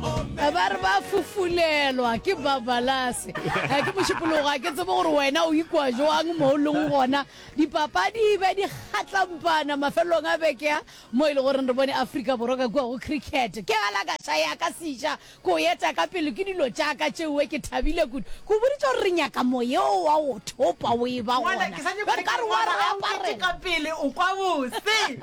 ba re ba fufulelwa ke babalase eh, ke mošupologo a ke tsebe gore wena o ikwa jwang mo o leng gona dipapadi be di kgatlampana mafelelong a bekea mo e le goreng re bone aforika borwa ka kua go cricket ke galakaša ya ka seša ko eta ka pele ke dilo jaaka tšeoe ke thabile kudu ko boditse gore re nyaka moyeo wa go thopa o e ba gona ka re wa re apareka pele o kwa bose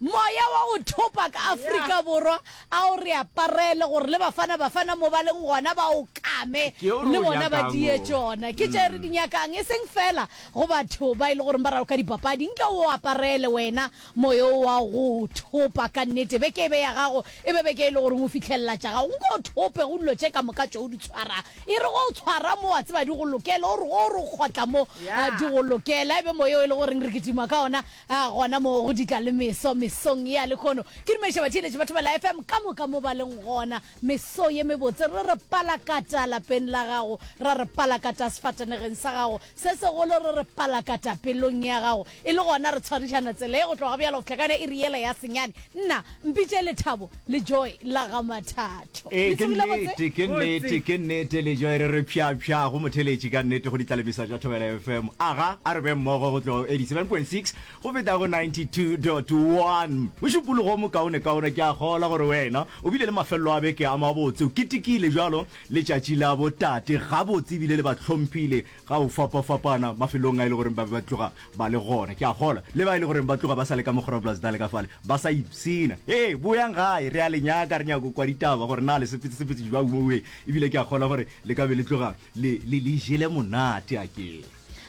moya wa go thopa ka aforika borwa A o re aparele gore le Bafana Bafana mo ba leng gona ba o kame le bona ba diye tšona. Ke tše re di nyakang, e seng feela go batho ba e le goreng ba raloka dipapadi. Nke o o aparele wena moyo wo wa go thopa ka nnete. Beke e be ya gago, e be beke e le goreng o fihlelela tša gago. Nko o thope go dilo tše ka moka tše o di tshwarang. E re ge o tshwara mo, wa tseba di go lokela, o re ge o re o kgotla mo, di go lokela. E be moyo o e le goreng re kitima ka ona. A gona moo go ditla le meso mesong ya lehono. Ke dumediša batheeletši ba Thobela FM ka moka mo ba leng gona. Meso ye mebotse re re palakata lapeng la gago, ra re palakata sefatanegeng sa gago, se segolo re re palakata pelong ya gago. E le gona re tshwarišana tseleng go tloga bjalo go fihla ka yona iri yela ya senyane. Nna, Mpitše Lethabo le Joy la ga Mathatho. Ee, ke nnete, ke nnete, ke nnete, Lejoy re re pjapja go motheletši ka nnete go ditlalemiso tša Thobela FM. Aga a re beng mmogo go tloga go 87.6 go feta go 92.1. Mošupologo o mokaonekaone, ke a kgolwa gore wena o bile le mafelelo a beke a mabotse, o ketekile bjalo letšatši la botate gabotse ebile le ba hlomphile ga go fapafapana mafelong a e le goreng ba be ba tloga ba le gona. Ke a kgolwa le ba e le goreng ba tloga ba sa le ka mogorabulasi dale ka fale ba sa ipshina. Hee, boyang gae, re a le nyaka, re nyaka go kwa ditaba gore na le sepetsesepetse jwang mo wee, e bile ke a kgolwa gore le ka be le tloga le, le, le jele monate, a ke.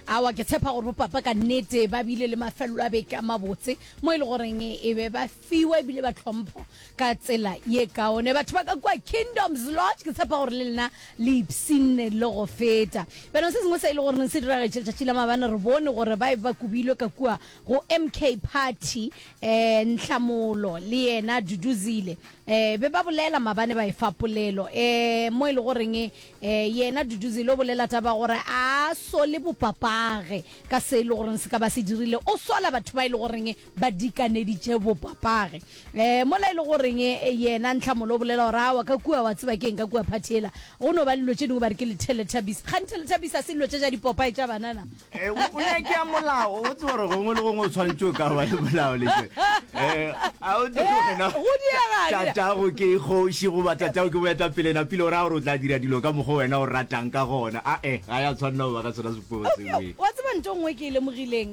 Aowa, ke tshepa gore bopapa ka nnete ba bile le mafelelo a beke a mabotse mo e le goreng e be ba. fiwa e bile ba tlhompho ka tsela ye kaone batho ba ka kua Kingdoms Lodge ke tshepa gore le lena le ipsinne le go feta beno se sengwe se e le gore se diragetše letšatši la mabane re bone gore ba e ba kubilwe ka kua go MK Party eh Nhlamolo le yena Duduzile eh be ba bolela mabane ba e fa polelo eh mo e le goreng eh yena Duduzile o bolela taba gore a sole bopapage ka se e le gore se ka ba se dirile o sola batho ba e le goreng ba dikaneditše bopapage e, mola e le goreng e, yena Ntlhamolo o bolela gore awa ka kua, wa tseba ke eng, ka kua phathi ela go no ba le dilo tše dingwe ba re ke lethelethabisa. Kgane thelethabisa se dilo tše tša dipopae tša banana. E, o nyake ya molao, o tseba gore gongwe le gongwe o tshwanetše o ka ba le molao le tše. E, a o tsebe gore na Go diega, dira. tatago ke kgoši goba tatago ke boetapele napile o raya gore o tla dira dilo ka mokgwa wena o ratang ka gona. A-e, ga ya tshwanela go ba ka sona sepogo seo. Eupša, ee. wa tseba ntho e nngwe e ke e lemogileng,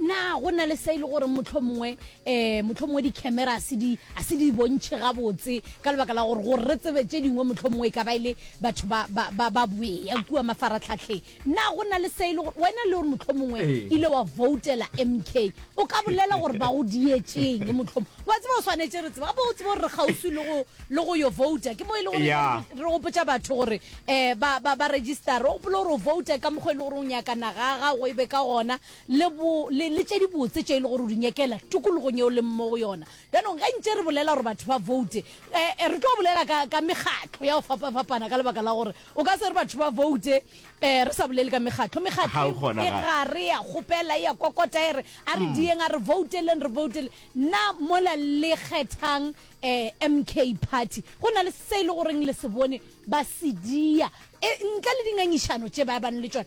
Na go na le se e le gore mohlomongwe um mohlomongwe dikhamera a se di a se di bontšhe gabotse ka lebaka la gore gore re tsebe tše dingwe mohlomongwe e ka ba e le batho ba ba ba ba boea kua mafaratlhatlheng na go na le se e le gore wena le gore mohlomongwe Ee. ile wa voutela mk o ka bolela gore ba go dietšeng mohlomong wa tseba o swanetše re tseba bo o tsebe gore re kgauswi le go le go yo vouta ke mo e le gore Ya. re re gopotša batho gore um ba ba ba registera o gopola gore o vouta ka mokgwa e le gore o nyakana ga gago e be ka gona le, bo, le, le tše dibotse tše e le gore o di nyakela tokologong yeo leng mo go yona. Bjanong, ge ntše re bolela gore batho ba voute, e, e, re tlo bolela ka, ka mekgatlo ya go fapafapana ka lebaka la gore o ka se re batho ba voute e, re sa bolele ka mekgatlo. Mekgatlo e, e gare ya kgopela, e ya kokota, e re, A re diyeng, a re vouteleng, re voutele. Na mola le kgethang e, MK Party, go na le se e le goreng le se bone ba se diya, e, ntle le dingangišano tše ba ebang le tšona?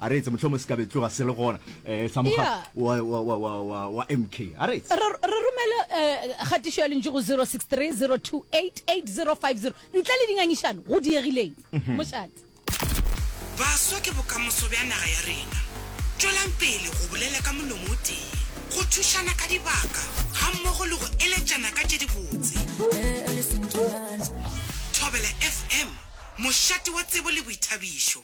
A reetse, Mohlomong se ka be tloga se le gona, eh, sa mokga Yeah. wa, wa, wa, wa, wa, wa MK. A reetse. Re re romele eh, kgatišo ya lentšu go 063 028 8050 ntle le dingangišano go diegileng. Mošate. Baswa ke bokamoso bja naga ya rena. Tšwelang pele go bolela ka molomo o tee, go thušana ka dibaka gammogo le go eletšana ka tše dibotse. Thobela FM, mošate wa tsebo le boithabišo.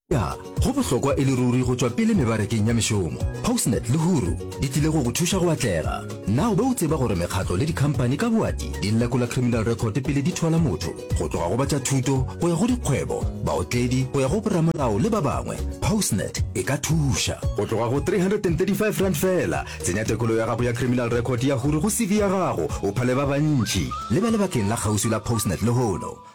Ya, go bohlokwa e le ruri go tšwa pele mebarekeng ya mešomo. Postnet le Huru di tlile go go thuša go atlega. Na o be o tseba gore mekgatlo le dikhampani ka boati di lekola criminal record pele di thola motho? Go tloga go ba tša thuto go ya go dikgwebo, baotledi go ya go boramolao le ba bangwe, Postnet e ka thuša. Go tloga go R335 feela, tsenya tekolo ya gago ya criminal record ya Huru go CV ya gago, o phale ba bantši. Lebale bakeng la kgauswi la Postnet lehono.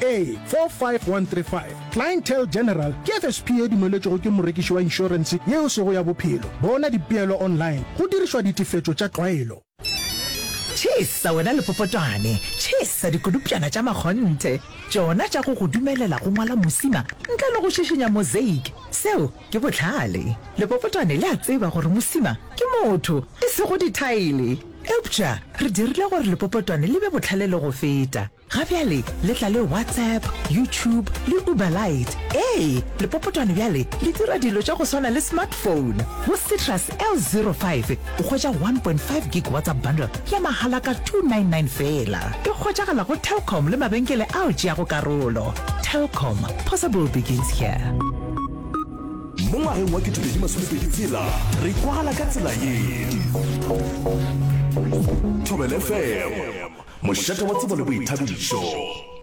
A45135, Clientele General ke FSP e dumeletšwego ke morekiši wa inšorense ye e sego ya bophelo. Bona dipeelo online go dirišwa ditefetšo tša tlwaelo. Tšhesa wena lepopotwane, tšhesa dikodupšana tša makgonthe, tšona tša go go dumelela go ngwala mosima ntle le go šišinya mosaic. Seo ke bohlale. Lepopotwane le a tseba gore mosima ke motho, e sego dithaele. Eupša re dirile gore lepopotwane le be bohlale le go feta. Ga bjale le tla le WhatsApp, YouTube le Uber Lite. Ee, lepopotwane bjale le dira dilo tša go swana le smartphone. Go Citrus L05 o hwetša 1.5 gig WhatsApp bundle ya mahala ka 299 feela. E hwetšagala go Telkom le mabenkele ao tšeago karolo. Telkom, possible begins here. Mo ngwageng wa 2026 re kwagala ka tsela ye. Thobela FM, mošate wa tsebo le boithabišo.